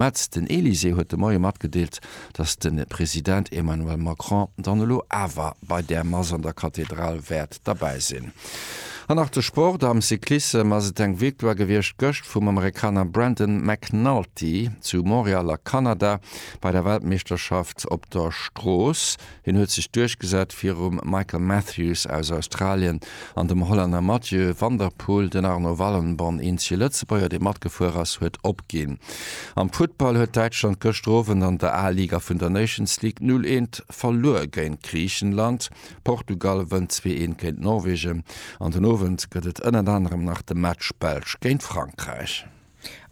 Mä den Elysée huet de Moie matgedeelt, datt de President Emmanuel Macron dann elo awer bei där Mass an der Kathedral wäert derbäi sinn. An nach de Sport, Am Cyclissem ass et eng Victoire gewiescht gëscht vum Amerikaner Brandon McNulty zu Montreal a Kanada bei der Weltmeeschterschaft op der Strooss. Hien huet sech duerchgesat virum Michael Matthews aus Australien an dem Hollänner Mathieu van der Poel. Den Arno Wallenborn, eenzege Lëtzebuerger dee matgefuer ass, huet opginn. Am Futtball huet Däitschland gëschter Owend an der A-Liga vun der Nations League 0 eent verluer géint Griichenland. Portugal wënnt 2 eent géint Norwegen. An den Owend gëtt et ënnert anerem nach de Match Belsch géint Frankräich.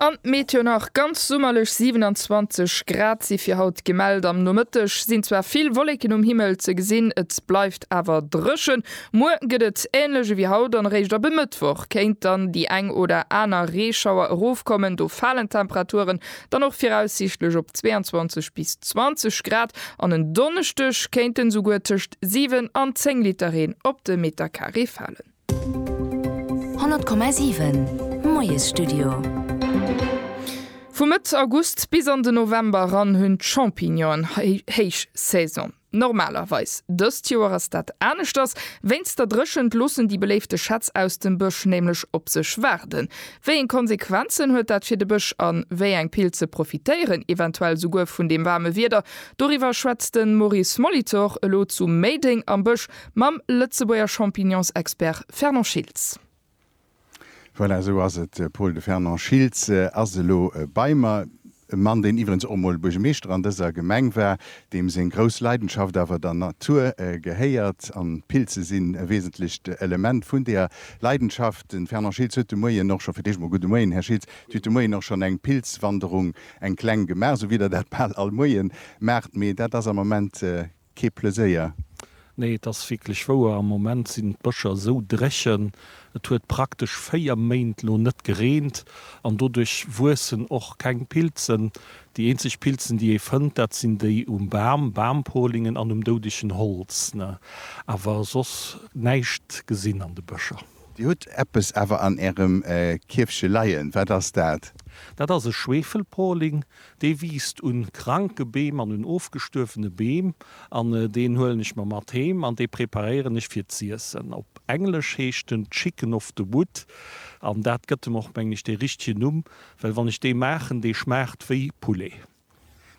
An d'Meteo nach, ganz summerlech 27 Grad si fir haut gemellt. Am Nomëtteg sinn zwar vill Wolleken um Himmel ze gesinn, et bleift awer dréchen. Muer gëtt et änlech ewéi haut an eréischt ab e Mëttwoch kéint dann déi eng oder aner Reeschauer erofkommen. Do falen d'Temperaturen dann och viraussiichtlech op 22 bis 20 Grad an en Donneschdeg kéinten esouguer tëscht 7 an 10 Liter Reen op de Metercarré falen. 100,7 Moiesstudio Vu Mëtt August bis an de November eran hunn d'Champignonen héich Saison. Normalerweis, dëst Joer ass dat aneschters, wéinst der Dréchent loossen déi beléifte Schätz aus dem Bësch nämlech op sech waarden. Wéi eng Konsequenzen huet dat fir de Bësch an wéi eng Pilze profitéieren eventuell souguer vun deem waarme Wieder? Doriwwer schwätzt de Maurice Molitor elo zu Méideng am Bësch mam Lëtzebuerger Champignonsexpert Fernand Schiltz. Voilà, esou ass et, Pol, de Fernand Schiltz ass elo bei mer. E Mann, deen iwwerens och emol Buergemeeschter an dëser Gemeng war, deem seng grouss Leidenschaft awer der Natur gehéiert, an d'Pilze sinn e wesentlecht Element vun deeër Leidenschaft. Den Fernand Schiltz huet de Moien och scho, fir d'éischt emol gudde Moien, Här Schiltz, Dir hutt de Moien och schonn eng Pilzwanderung, eng kleng, gemaach, esou wéi Der dat bal all Moie maacht, mee dat ass am Moment kee Pleséier. Nee, et ass wierklech wouer, am Moment sinn d'Bëscher esou dréchen. Et huet praktesch 4 Méint lo net gereent an doduerch wuessen och keng Pilzen. Déi eenzeg Pilzen, déi ee fënnt, dat sinn déi um Bam, Bampoligen, an um doudegen Holz, ne? Awer soss näischt gesinn an de Bëscher. Dir hutt eppes awer an ärem Kierfche leien. Wat ass dat? Dat ass e Schwefelpoling. Dee wiisst un kranke Beem an un ofgestuerwene Beem an deen huelen ech mer mat heem an dee preparéieren ech fir z'iessen. Op Englesch heescht en Chicken of the Wood an dat gëtt em och, mengen ech, dee richtegen Numm, well wann ech dee maachen, dee schmaacht wéi Poulet.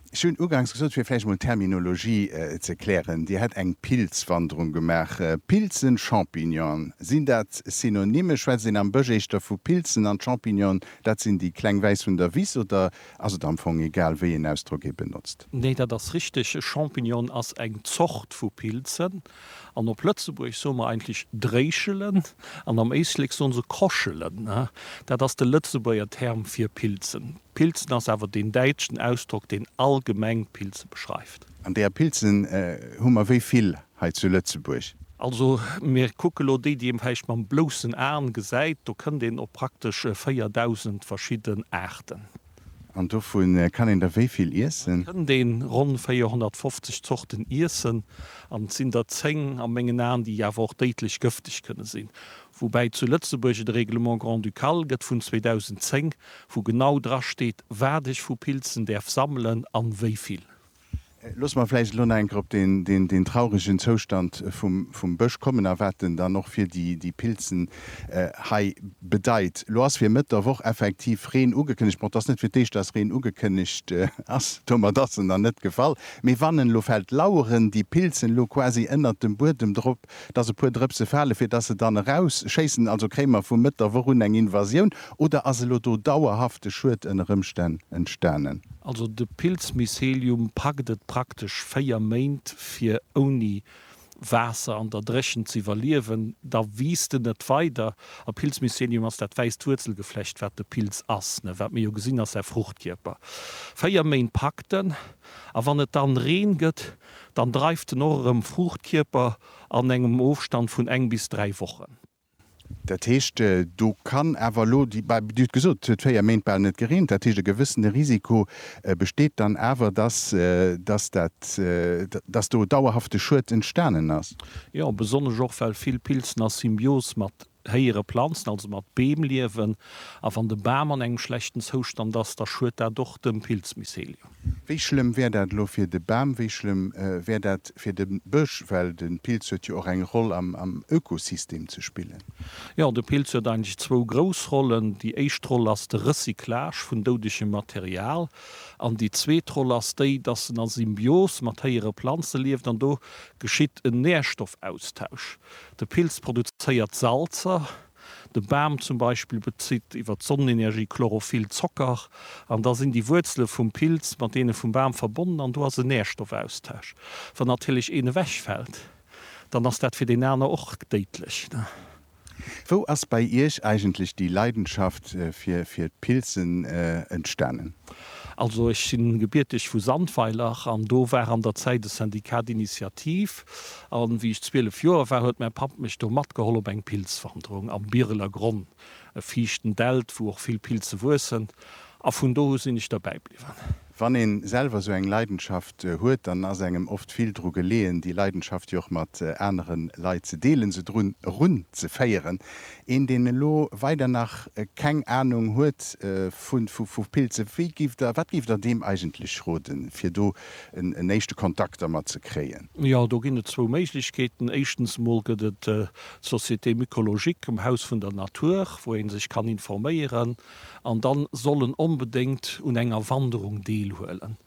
Ech hunn ugangs gesot, fir vläicht emol d'Terminologie ze klären, Dir hätt eng Pilzwanderung gemaach. Pilzen, Champignonen, sinn dat Synonyme? Schwätzt een am Bësch éischter vu Pilzen? An d'Champignonen, dat sinn déi kleng wäiss vun der Wiss oder Ass et am Fong egal wéi een Ausdrock ee benotzt? Nee, dat ass richteg. E Champignon ass eng Zort vu Pilzen. An op Lëtzebuergesch soe mer eigentlech Dréischelen an am Éislek soe se Koschelen. Dat ass de Lëtzebuerger Term fir Pilzen. Pilzen ass awer deen däitschen Ausdrock, deen allgemeng Pilze beschreift. An där Pilzen hu mer wéi vill? hei zu Lëtzebuerg. Also mir kucke lo déi, déi ee vläicht mam bloussen A gesäit, do kënnt een op praktesch 4.000 verschidden Aarten. An dovu kann een der wéi vill iessen? Da kënnt een ronn 450 Zorten iessen an et sinn der 10 a mengen Aen, déi awer och déidlech gëfteg kënne sinn. Woubäi zu Lëtzebuerg et e Règlement grand-ducal gëtt vun 2010, wou genau drasteet, wat ech vu Pilzen däerf sammelen an wéi vill. Loosse mer vläicht elo nach eng Kéier op deen trauregen Zoustand vum Bësch kommen a wat en dann och fir déi Pilzen hei bedeit. Elo ass fir Mëtt der Woch effektiv Reen ugekënnegt, bon, et ass net fir d'éischt, dass Reen ugekënnegt ass, domat ass en dann net gefall, mee wann en elo fält, laueren déi Pilzen elo quasi ënnert dem Buedem drop, Dass e puer Drëpse fale fir dass se dann erausschéissen? Also kréie mer vu Mëtt der Woch un eng Invasioun oder ass elo do dauerhafte Schued ënner Ëmstänn entstanen? Also de Pilzmycelium packt et praktesch 4 Méint fir ouni Waasser an der Dréchent ze iwwerliewen, da wiisst en net weider. A Pilzmycelium ass dat wäisst Wuerzelgeflecht wat de Pilz ass, ne? Wat mir jo gesinn ass säi Fruchtkierper. 4 Méint packt en a wann et dann Reen gëtt, Dann dreift en och erëm Fruuchtkierper an engem Ofstand vun eng bis dräi Wochen. Dat heescht, do kann awer elo, Dir hutt gesot, et huet véier Méint bal net gereent, dat heescht, e gewëssene Risiko besteet dann awer, dass dat, dass do dauerhafte Schued entstanen ass? Jo, besonnesch och, well vill Pilzen a Symbios mat héiere planzen, also mat Beem liewen, a wann de Bam an engem schlechten Zoustand ass, da schuet dat och dem Pilzmycelium. Wéi schlëmm wär dat elo fir de Bam? Wéi schlëmm wär dat fir de Bësch? Well de Pilz huet jo och eng Roll am Ökosystem ze spillen. Jo, de Pilz huet eigentlech zwou grouss Rollen. Déi éischt Roll ass de Recyclage vun doudegem Material an déi zweet Roll ass déi, dass en a Symbios mat héiere Planze lieft an do geschitt en Nährstoffaustausch. De Pilz produzéiert Salzer, de Bam zum Beispill bezitt iwwer d'Sonnenenergie Chlorophyll, Zocker, an da sinn déi Wuerzele vum Pilz mat deene vum Bam verbonnen an do ass en Nährstoffaustausch. Wann natierlech een ewechfält, dann ass dat fir deen aner och déidlech. Wou ass bei Iech eigentlech déi Leidenschaft fir d'Pilzen entstanen? Also ech si gebierteg vu Sandweiler an do war an der Zäit e Syndicat d'Initiative, A wéi ech 12 Joer war, huet mäi Papp mech do matgeholl op eng Pilzwanderung am Bireler Gronn, e fiichten Dält, wou och vill Pilze wuessen. A vun do u sinn ech derbäi bliwwen. Wann ee selwer esou eng Leidenschaft huet, dann ass engem oft vill dru geleeën, déi Leidenschaft jo och mat anere Leit ze deelen, se drun erunzeféieren. Een, deen elo weider nach keng Anung huet vu Pilze, wéi géift Der, wat géift Der deem eigentlech roden, fir do en éischte Kontakt dermat ze kréien? Jo, do ginn et zwou Méiglechkeeten. Éischtens emol gëtt et d'Société mycologique um Haus vun der Natur, wou ee sech kann informéieren. An da soll en onbedéngt un enger Wanderung deelhuelen.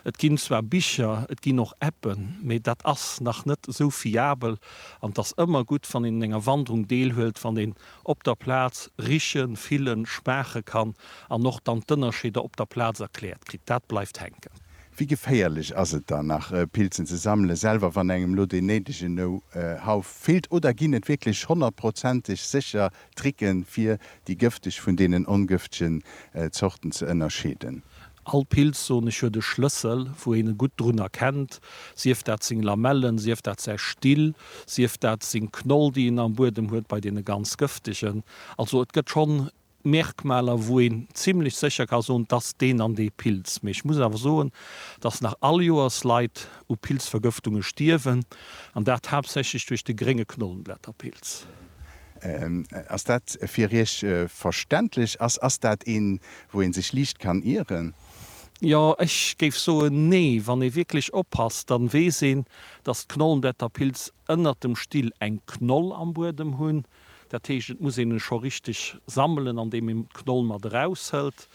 Et ginn zwar Bicher, et ginn och Appen, mee dat ass nach net esou fiabel. An et ass ëmmer gutt, wann een un enger Wanderung deelhuelt, wann een op der Plaz richen, fillen, schmaache kann an och dann d'Ënnerscheeder op der Plaz erkläert kritt. Dat bleift hänken. Wéi geféierlech ass et dann nach Pilzen ze sammelen, selwer wann engem lo deen néidegen Know-how feelt? Oder ginn et wierklech honnertprozenteg sécher Tricken, fir déi gëfteg vun deenen ongëftegen Zorten ze ënnerscheeden? All Pilz, soen ech, huet e Schlëssel, wou een e gutt drun erkennt, sief dat seng Lamellen, sief dat säi Still, sief dat seng Knoll, déi en am Buedem huet, bei deene ganz gëftegen. Also et gëtt schonn Merkmaler wou een zimlech sécher ka soen, dass deen an dee Pilz. Mee ech muss awer soen, dass nach all Joers Leit u Pilzvergëftunge stierwen, an dat haaptsächlech duerch de Grénge Knollenblätterpilz. Ass dat fir Iech verständlech? Ass dat een, wou ee sech liicht kann ieren? Jo, ech géif soen, nee. Wann ee wierklech oppasst, da weess een, dass d'Knollenblätterpilz ënnert dem Still eng Knoll am Buedem hunn, Dat heescht, et muss een e scho richteg sammelen, andeem een d'Knoll mat eraushëlt.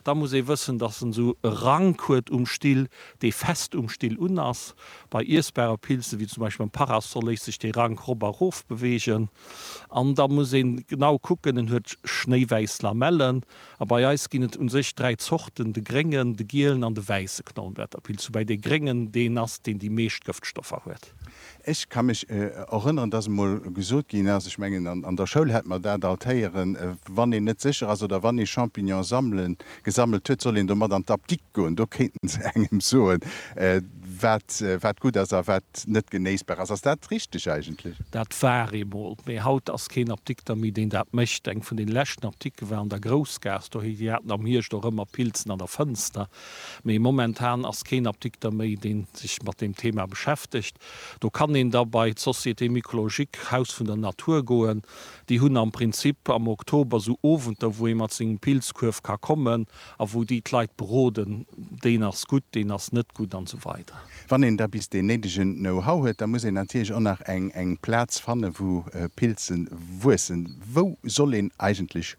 Da muss ee wëssen, datt en esou e Rank huet um Still, dee fest um Still un ass. Bei iessbare Pilze, wéi zum Beispill beim Parasol, léisst sech dee Rank rop a rof beweegen. An da muss een genau kucken, en huet schnéiwäiss Lamellen. A bei eis ginn et u sech dräi Zorten, de gréngen, de gielen an de wäisse Knollenblätterpilz. Woubäi dee gréngen deen ass, deen déi meescht Gëftstoffer huet. Ech ka mech erënneren, dass emol gesot ginn ass, ech mengen an der Schoul hätt mer dat alt héieren, wann een net sécher ass oder wann ee Champignon sammelen, gesammelt huet, soll een domat an d'Apdikt goen, do kéinte se engem soen, wat, wat gutt ass a wat net genéissbar ass. Ass dat richteg eigentlech? Dat war eemol, mee haut ass keen Apdikter méi, deen dat mécht. Eng vun den leschten Apdikte war an der Groussgaass, dohi, déi haten am Hierscht och ëmmer Pilzen an der Fënster. Mee momentan ass keen Apdikter méi, dee sech mat deem Thema beschäftegt. Do kann een da bei d'Société mycologique, d'Haus vun der Natur, goen. Déi hunn am Prinzip am Oktober esou Owenter, wou ee mat sengem Pilzkuerf ka kommen a wou déi d'Leit beroden, deen ass gutt, deen ass net gutt an esou weider. Wann een da bis deen néidegen Know-how huet, da muss een natierlech och nach eng Plaz fanne wou Pilze wuessen. Wou soll een eigentlech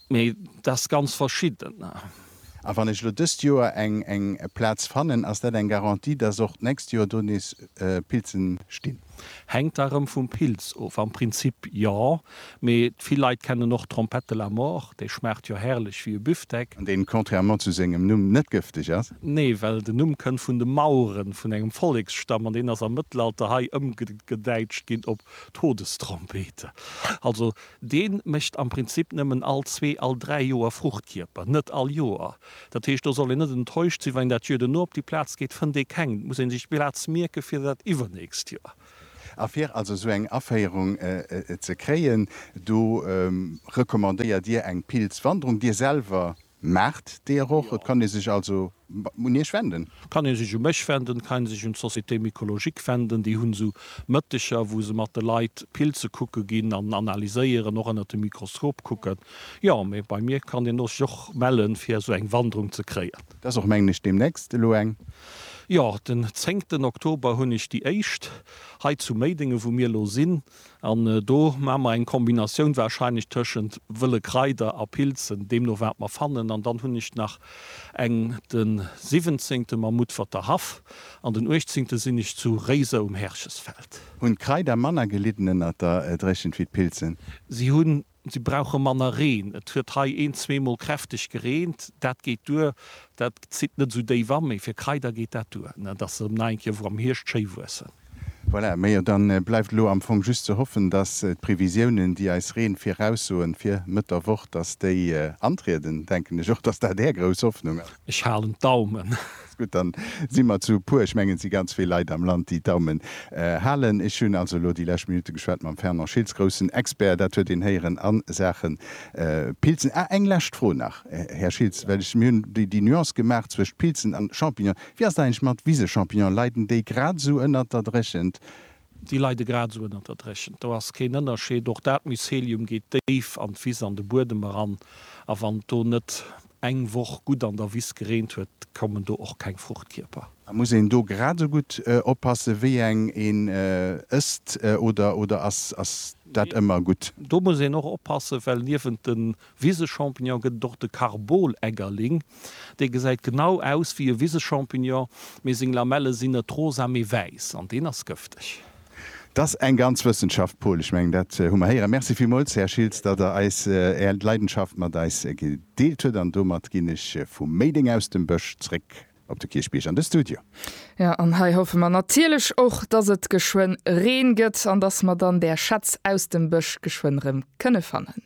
Mee dat ass ganz verschidden. A wann ech elo dëst Joer eng eng Plaz fannen, ass dat eng Garantie, dass och d'nächst Joer do nees Pilzen stinn? Hänkt da erëm vum Pilz of. Am Prinzip jo, mee vill Leit kennen och Trompette de la mort, déi schmaacht jo herrlech wéi e Büftek. An deen contrairement zu sengem Numm net gëfteg ass? Nee, well den Numm kënnt vun de Mauren, vun engem Volleksstamm, an deen ass am Mëttelalter hei ëmgedäitscht ginn op Todestrompete. Also Dee mécht am Prinzip nëmmen all zwee, all dräi Joer Fruchtkierper, net all Joer. Dat heescht, do soll een net enttäuscht sinn, wann een dat Jör duerno op déi Plaz geet, fënnt ee keng. Et muss ee sech d'Plaz mierke fir dat iwwernächst Jor. A fir also esou eng Aféierung ze kréien, do recommandéiert Dir eng Pilzwanderung. Dir selwer Maacht Dir och. Et kann ee sech also un Iech wenden. Kann ee sech u mech wenden. Et kann ee sech un d'Société mycologique wenden. Déi hunn esou Mëtteger, wou se mat de Leit Pilze kucke ginn an analyséieren, och ënnert dem Mikroskop kucken. Jo, mee bei mir kann een sech och mellen, fir esou eng Wanderung ze kréien. Et ass och, mengen ech, deemnächst elo eng. Jo, den zéngten Oktober hunn ech déi éischt hei zu Méidenge, wou mir elo sinn. An do maache mer eng Kombinatioun wahrscheinlech tëschent wëlle Kraider a Pilzen, deemno wat mer fannen. An dann hunn ech nach eng de siwwenzéngte mam Mutferter Haff an den uechtzéngte sinn ech zu Réiser um Herchesfeld. Hunn d'Kraider manner gelidden ënnert der Dréchent wéi d'Pilzen? Si hunn Si brauche manner Reen. Et huet hei een, zweemol kräfteg gereent. Dat geet duer. Dat zitt net esou déif a. Mee fir Kraider geet dat duer, dass se nei eng Kéier wou am Hierscht schéi wuessen. Voilà, méi jo, da bleift elo am Fong just ze hoffen, dass d'Previsiounen, déi eis Reen viraussoen fir Mëtt der Woch, dass déi antrieden. Denken ech och, dass dat Är grouss Hoffnung ass. Ech halen d'Daumen. Gutt, dann si mer zu puer. Ech mengen et si ganz vill Leit am Land déi d'Daumen halen. Ech hunn also elo déi lescht Minutte geschwat mam Fernand Schiltz, groussen Expert, dat huet een héieren, a Saachen Pilzen. Ah, eng lescht Fro nach, Här Schiltz, well ech, mir hunn déi Nuance gemaach zwëscht Pilzen an Champignonen. Wéi ass dat eigentlech mat Wisechampignonen? Leiden déi grad esou ënnert der Dréchent Déi leide grad esou ënnert der Dréchent, do ass keen Ënnerscheed. Och dat Mycelium geet déif an d'Wiss, an de Buedem eran. A wann et do net eng Woch gutt an der Wiss gereent huet, kommen do och keng Fruchtkierper. A muss een do grad esou gutt oppasse wéi eng een ësst oder ass dat ëmmer gutt? Do muss een och oppasse well niewent de Wisechampignon gëtt et och de Karbol-Eggerling. Dee gesäit genau aus wéi e Wisechampignon, mee seng Lamelle sinn net rosa, mee wäiss. An deen ass gëfteg. T'ass eng ganz Wëssenschaft, Paul. Ech mengen, dat hu mer héieren. Merci villmools, Här Schiltz, datt Der eis Är Leidenschaft mat eis gedeelt hutt. An domat ginn ech vu Méideng aus dem Bësch zréck op de Kierchbierg an de Studio. Jo, an hei hoffe mer natierlech och, datt et geschwënn Reen gëtt an datt mer dann där Schätz aus dem Bësch geschwënn rëm kënne fannen.